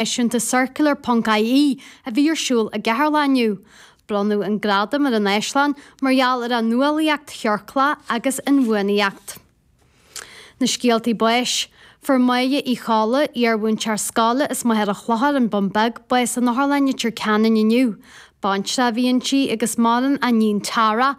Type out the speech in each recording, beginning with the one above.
eisiúint Circular ponc IE a bhí ar siúl i gCeatharlach inniu. Bronnadh an gradam ar an Áislann mar gheall ar a nuálaíocht chiorclach agus inbhuanaíocht. Na scéaltaí báis. Fuair Moya Uí Cholla, iar-mhúinteoir scoile as Machaire Chlochair, an Bun Beag, bás in Otharlann Leitir Ceanainn inniu. Baintreach a bhí inti agus maireann a níon Tara,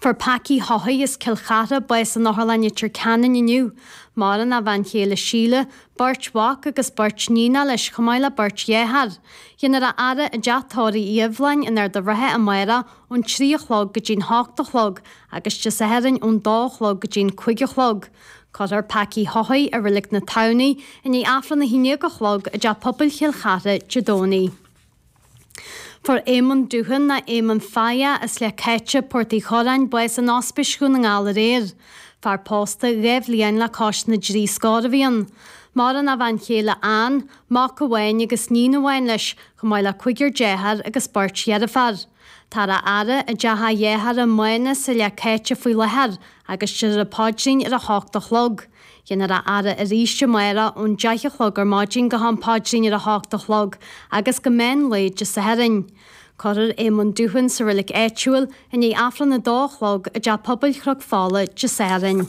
Fuair Pacaí Haughey as Cill Chartha bás in Otharlann Leitir Ceanainn inniu. Maireann a bhean chéile Síle, beirt mhac agus beirt níonach leis chomh maith le beirt dheartháir. Dhéanfar a fhaire i dTeach Tórraimh Uí Sheibhleáin in Ard an Rátha amárach ón trí a chlog go dtí'n h-ocht a chlog agus Dé Sathairn ón dó a chlog go dtí'n cúig a chlog. Cuirfear Pacaí Haughey i Roilig na Tamhnaí i ndiaidh Aifreann a haon déag a chlog i dTeach Pobail Chill Chartha Dé Domhnaigh. Fuair Éamonn Doohan nó Éamonn Faye as Leath Caitte, Port Uí Chuireáin, bás in Ospís Dhún na nGall aréir. Fear pósta, dhá bhliain le cois na dtrí scór a bhí ann. Maireann a bhean chéile Anne, mac amháin agus níon amháin leis, chomh maith le cúigear dearthár agus beirt dheirféar. Táthar á fhaire i dteach a dhearthár Mánus sa Leath Caitte faoi láthair agus déarfar an paidrín ar a hocht a chlog. Dhéanfar a fhaire arís amárach ón deich a chlog ar maidin go ham paidrín ar a hocht a chlog agus go meán lae Dé Sathairn. Cuirfear Éamonn Doohan sa roilig áitiúil i ndiaidh Aifreann a dó a chlog i dTeach Pobail Chnoc Fola Dé Sathairn.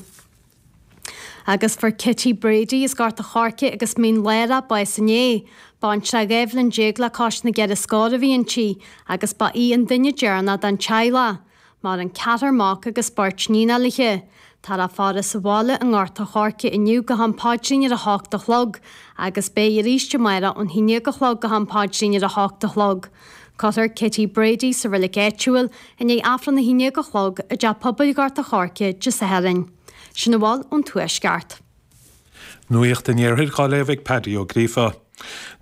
agus fuair Kitty Brady as Gort a' Choirce agus Mín Lárach bás inné. Baintreach dhá bhliain déag le cois na gceithre scór a bhí inti agus ba í an duine deireanach den teaghlach. Maireann ceathrar mac agus beirt níonach léithe. Táthar á faire sa bhaile i nGort a' Choirce inniu go ham paidrín ar a hocht a chlog agus beidh arís amárach ón haon déag a chlog go ham paidrín ar a hocht a chlog. Cuirfear Kitty Brady sa roilig áitiúil i ndiaidh Aifreann a haon déag a chlog i dTeach Pobail Ghort a' Choirce Dé Sathairn. Sin a bhfuil ón Tuaisceart. Nuacht an Iarthair á léamh ag Paddy Ó Gríofa.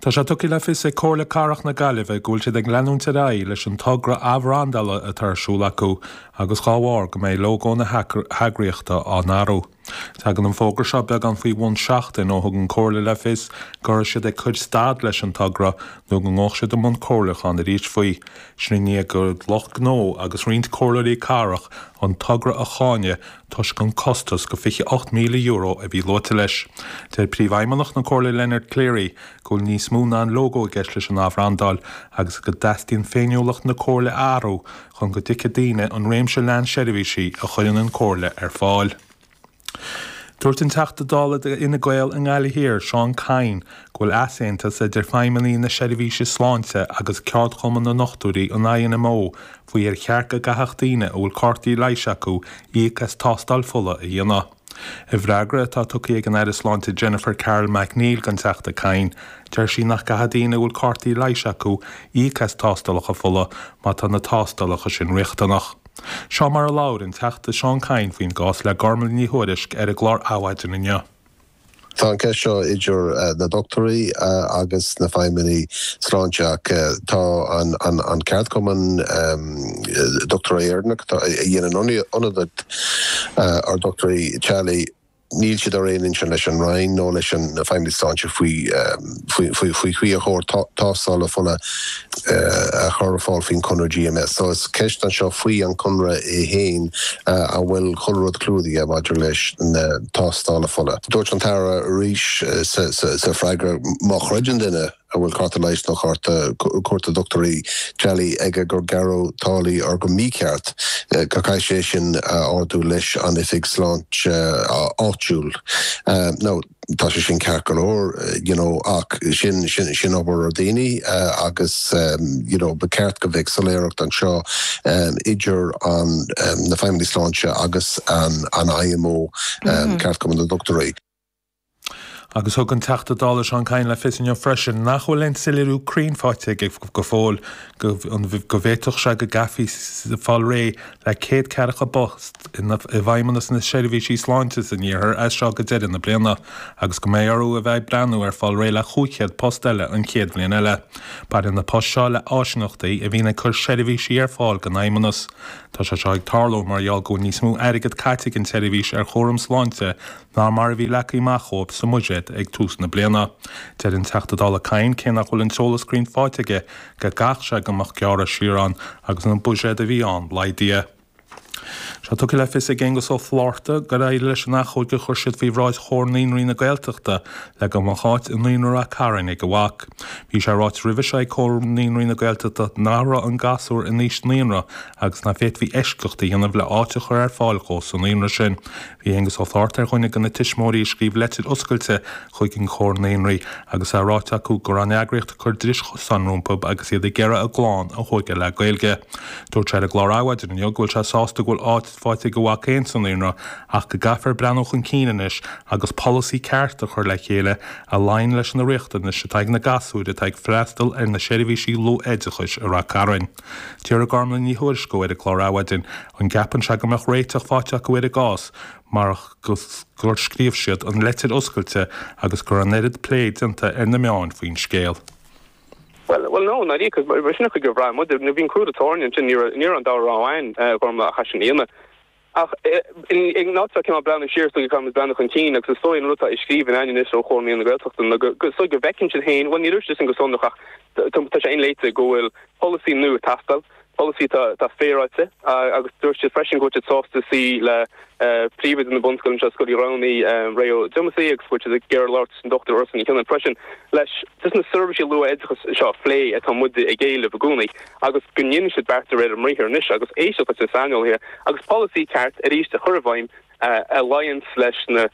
Tá sé tugtha le fios ag Comhairle Cathrach na Gaillimhe go bhfuil siad ag leanúint ar aghaidh leis an togra athbhrandála atá ar siúl acu agus dá bharr go mbeidh lógó na heagraíochta á n-athrú. Tagann an fógra seo beagán faoi bhun seachtain ó thug an Chomhairle le fios go raibh siad ag cur stad leis an togra nó go ngabhadh siad i mbun comhairliúcháin arís faoi. Sin i ndiaidh do lucht gnó agus roinnt comhairleoirí cathrach an togra a cháineadh toisc an costas go €28,000 a bhí luaite leis. Deir Príomhfheidhmeannach na Comhairle Leonard Cleary go bhfuil níos mó ná an lógó i gceist leis an athbhrandáil agus go dteastaíonn féiniúlacht na Comhairle a athrú chun go dtuigfidh daoine an réimse leathan seirbhísí a chuireann an Chomhairle ar fáil. Dúirt an Teachta Dála do Fhine Gael i nGaillimh Thiar, Seán Kyne, go bhfuil easaontas idir feidhmeannaigh na seirbhíse sláinte agus ceardchumann na ndochtúirí an INMO faoi ar cheart go gcaithfeadh daoine a bhfuil cártaí leighis acu íoc as tástáil fola a dhéanamh. I bhfreagra atá tugtha ag an Aire Sláinte Jennifer Carroll MacNeill don Teachta Kyne, deir sí nach gcaithfidh daoine a bhfuil cártaí leighis acu íoc as tástálacha fola má tá na tástálacha sin riachtanach. Seo mar a labhair an Teachta Seán Kyne faoin gcás le Gormlaith Ní Thuairisg ar an gclár Adhmhaidin inniu. Tá an ceist seo idir na dochtúirí agus an Feidhmeannacht Sláinte ach tá an ceardchumann Dochtúirí Éireannach, a dhéanann ionadaíocht ar dhochtúirí teaghlaigh, níl siad ar aon intinn leis an Roinn nó leis an Feidhmeannacht Sláinte faoi. faoi cé ar chóir tástála fola a chur ar fáil faoin conradh GMS. So is ceist anseo faoi an conradh é féin an bhfuil chuile rud clúdaithe maidir leis na tástála fola. Dúirt an tAire arís sa freagra má chreideann duine a bhfuil cárta leighis nó cárta cuairte dochtúirí teaghlaigh aige gur gearradh táillí air go mícheart, go caithfidh sé é sin a ardú leis an oifig sláinte áitiúil. Now. Tá sé sin ceart go leor you know ach sin, sin, sin obair ar dhaoine agus you know ba cheart go bheadh soiléireacht anseo idir an na feidhmeannaigh sláinte agus an an IMO Ceardchumann na nDochtúirí. Agus thug an Teachta Dála Seán Kyne le fios inniu freisin nach bhfuil aon soiléiriú cruinn faighte aige go fóill ach go bhféadfadh sé go gcaithfí fáil réidh le céad ceathracha post i bhfeidhmeannas na seirbhísí sláinte san iarthar as seo go deireadh na bliana agus go mbeidh orthu a bheith ag breathnú ar fáil réidh le 500 post eile an chéad bhliain eile. Baineann na poist seo le háisineachtaí a bhíonn ag cur seirbhísí ar fáil don fheidhmeannas. Tá sé seo ag tarlú mar gheall go bhfuil níos mó airgead caite ag an tseirbhís ar chúram sláinte ná mar a bhí leagtha amach dhóibh sa mbuiséad ag tús na bliana. Deir an Teachta Dála Kyne cé nach bhfuil an t-eolas cruinn faighte aige, go gcaithfeadh sé go mbeadh gearradh siar ann agus an buiséad a bhí ann laghdaithe. Tá sé tugtha le fios ag Aengus Ó Flaithearta gur éirigh leis an achomhairc a chuir siad faoi bhráid Chomhar Naíonraí na Gaeltachta le go mbeadh áit i naíonra Rath Cairn ag a mhac. Bhí sé ráite roimhe seo ag Comhar Naíonraí na Gaeltachta nach raibh an gasúr in aois naíonra agus nach bhféadfaí eisceacht a dhéanamh le áit a chur ar fáil dhó sa naíonra sin. Bhí Aengus Ó Flaithearta ar dhuine de na tuismitheoirí a scríobh Leitir Oscailte chuig an Chomhar Naíonraí agus é ráite acu go raibh an eagraíocht ag cur dris chosáin rompu agus iad ag iarraidh a gclann a thóigeáil le Gaeilge. Dúirt sé ar an gclár Adhmhaidin inniu go bhfuil sé sásta go bhfuil áit faighte ag a mhac féin sa naíonra ach go gcaithfear breathnú chun cinn anois agus polasaí ceart a chur le chéile a luíonn leis na riachtanais atá ag na gasúir atá ag freastal ar na seirbhísí luath-oideachais i Rath Cairn. D'fhiafraigh Gormlaith Ní Thuairisg dhó ar an gclár Adhmhaidin an gceapann sé go mbeadh réiteach faighte acu ar a gcás, marach gur scríobh siad an leitir oscailte agus go raibh an oiread plé déanta ar na meáin faoin scéal. Bhuel, bhuel no, is dóigh gur bhraith muid, bhí an crú ar an tairne ansin, ní raibh, ní raibh an dá rogha againn, a Ghormfhlaith, sa gcás sin againn. Ach in áit a bheith cineál breathnú siar is dóigh go gcaithfimid breathnú chun cinn agus is dóigh an rud atá i scríbhinn againn anois ó Chomhar Naíonraí na Gaeltachta ná go, is dóigh go bhfeiceann siad féin, bhuel níor dhúirt siad sin go sonrach ach tá sé inléite go bhfuil polasaí nua ag teastáil, pholasaí atá féaráilte agus dúirt siad freisin go bhfuil siad sásta suí le príomhoide na bunscoile anseo, Scoil Uí Ghramhnaigh, Ray Ó Diomasaigh agus go bhfuil siad ag iarraidh labhairt leis an Dr Ursula Ní Shabhaois freisin leis na seirbhísí luath-oideachais seo a phlé atá muide ag éileamh i gcónaí agus go ndéanfaidh siad beart de réir a mbriathair anois agus éisteacht leis na saineolaithe agus polasaí ceart arís a chur i bhfeidhm a luíonns leis na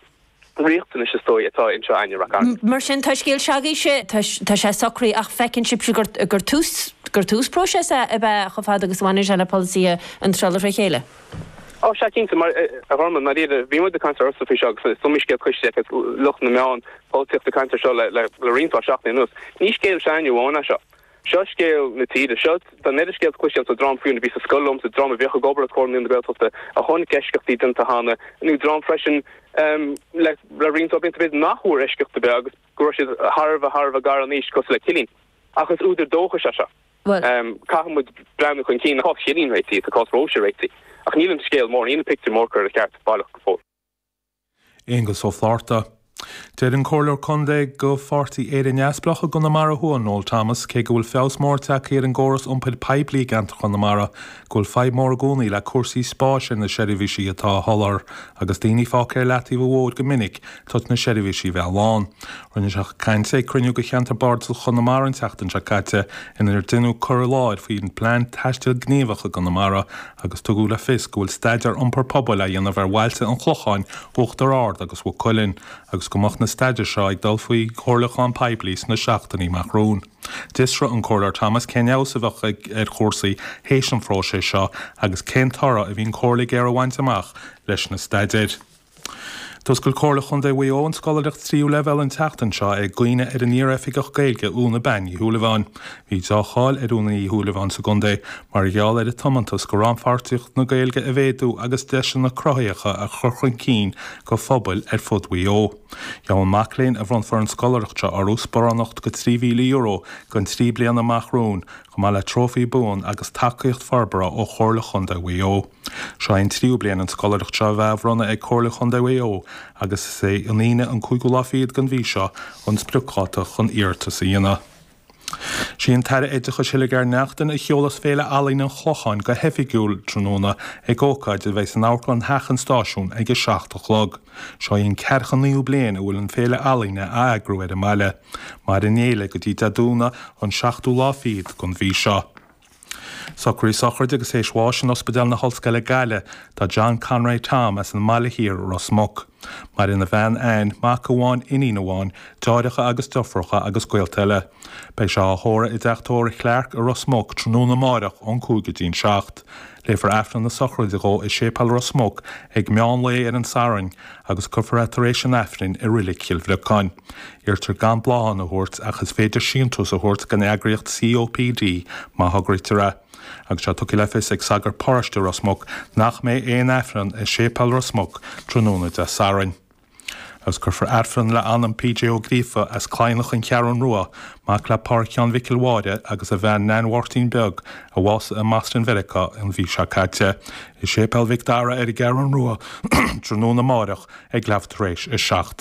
riachtanais, is dóigh, atá anseo i Ráth Chairn. Mar sin, tá scéal s'agaibhse, tá sé socraithe ach feiceann sibhse gur tús próisis é ab ea chomh fada agus a bhaineann sé le polasaithe naíonra trí chéile? Ó, sea cinnte, a Ghormfhlaith, ar ndóigh, bhí muid ag caint ortsa faoi seo agus is iomaí scéal cloiste ag, lucht na meán, polaitíochta ag caint ar seo le roinnt mhaith seachtainí anuas. Ní scéal s'againne amháin é seo. Seo scéal na tíre. Seo ar ndóigh scéal, cuid acu sin dream féin a bhí sa scoil liomsa, dream a bheadh ag obair i gComhar Naíonraí na Gaeltachta a chonaic eisceachtaí déanta cheana, nó dream freisin le roinnt blianta fada nach bhfuair eisceacht ar bith agus go raibh siad thar a bheith, thar a bheith gar in aois, cosúil le Cillín. Ach is údar dóchais é seo. Caithfimid breathnú chun cinn. Tá cás Chillín réitithe, tá cás Róise réitithe, ach níl an scéal mór, níl an pictiúr mór curtha ina cheart, baileach, go fóill. Aonghus Ó Flatharta. Deir an Comhairleoir Contae de Pháirtí Éire Neamhspleách i gConamara Thuaidh, Noel Thomas, cé go bhfuil feabhas mór tagtha ar an gcóras iompair poiblí i gceantar Chonamara, go bhfuil fadhb mór i gcónaí le cúrsaí spáis ar na seirbhísí atá á soláthar agus daoine fágtha ar leataobh an bhóthair go minic toisc na seirbhísí bheith lán. Rinne sé an chaint ag cruinniú de cheantar Bardasach Chonamara an tseachtain seo caite inar déanadh cur i láthair faoin bPlean Taistil Gníomhach i gConamara agus tugadh le fios go bhfuil staidéar iompair pobail á dhéanamh ar bhailte an Chlocháin, Uachtar Ard agus Mhaigh Cuilinn agus go mbeadh na staidéir seo ag dul faoi chomhairliúchán poiblí sna seachtainí amach romhainn. D'fhiosraigh an Comhairleoir Thomas cén fheabhas a bheadh ar chúrsaí théis an phróisis seo agus cén toradh a bhí an chomhairle ag iarraidh a bhaint amach leis na staidéir. D'fhoscail Comhairle Chontae Mhaigh Eo an scoláireacht tríú leibhéal an tseachtain seo i gcuimhne ar an iar-Oifigeach Gaeilge Úna Bean Uí Shúilleabháin. Bhí dea-cháil ar Úna Uí Shúilleabháin sa gcontae mar gheall ar a tiomantas go rannpháirtíocht na Gaeilge a mhéadú agus deiseanna cruthaitheacha a chur chun cinn go phobail ar fud Mhaigh Eo. Gheobhaidh an mac léinn a bhronnfar an scoláireacht seo orthu sparánacht go €3,000 don trí bliana amach romhainn, chomh maith le trófaí buan agus tacaíocht forbartha ó Chomhairle Chontae Mhaigh Eo. Seo é an tríú bliain an scoláireacht seo a bheith á bhronnadh ag Comhairle Chondae Mhaigh Eo agus is é an Aoine an cúigiú lá fichead den mhí seo an spriocdháta chun iarratas a dhéanamh. Is í an tAire Oideachais Hildegarde Naughton a sheolfas Féile Ealaíne an Chlocháin go hoifigiúil tráthnóna ag ócáid a bheidh san Amharclann Theach an Stáisiúin ag a seacht a chlog. Seo í an ceathracha naoú bliain a bhfuil an Féile Ealaíne á eagrú ar an mbaile, mairfidh an fhéile go dtí Dé Domhnaigh an seachtú lá fichead den mhí seo. Socruithe sochraide agus tar éis bháis in Ospidéal na hOllscoile Gaillimh do John Conroy Tom as an mBaile Thiar, Ros Muc. Maireann a bhean Anne, mac amháin, iníon amháin, deartháireacha agus deirfiúracha agus gaolta eile. Beidh sé á thórramh i dTeach Tórraimh Clarke i Ros Muc tráthnóna amáireach ón cúig go dtí'n seacht. Léifear Aifreann na sochraide dhó i Séipéal Ros Muc ag meán lae ar an Satharn agus cuirfear é tar éis an Aifrinn i Reilig Chill Bhriocáin. Iarrtar gan bláthanna a thabhairt ach is féidir síntiús a thabhairt don eagraíocht COPD má thograítear é. Agus tá tugtha le fios ag sagart paróiste Ros Muc nach mbeidh aon aifreann i Séipéal Ros Muc tráthnóna Dé Sathairn. Agus cuirfear aifreann le anam PJ Ó Gríofa as Claidhneach an Cheathrún Rua, mac le Pádraic Sheáin Mhicil Mháire agus a bhean Neain Mháirtín Beag, a bhásaigh i mBoston Mheiriceá an mhí seo caite, i Séipéal Mhic Dara ar an gCeathrún Rua tráthnóna amáireach ag leathuair tar éis a seacht.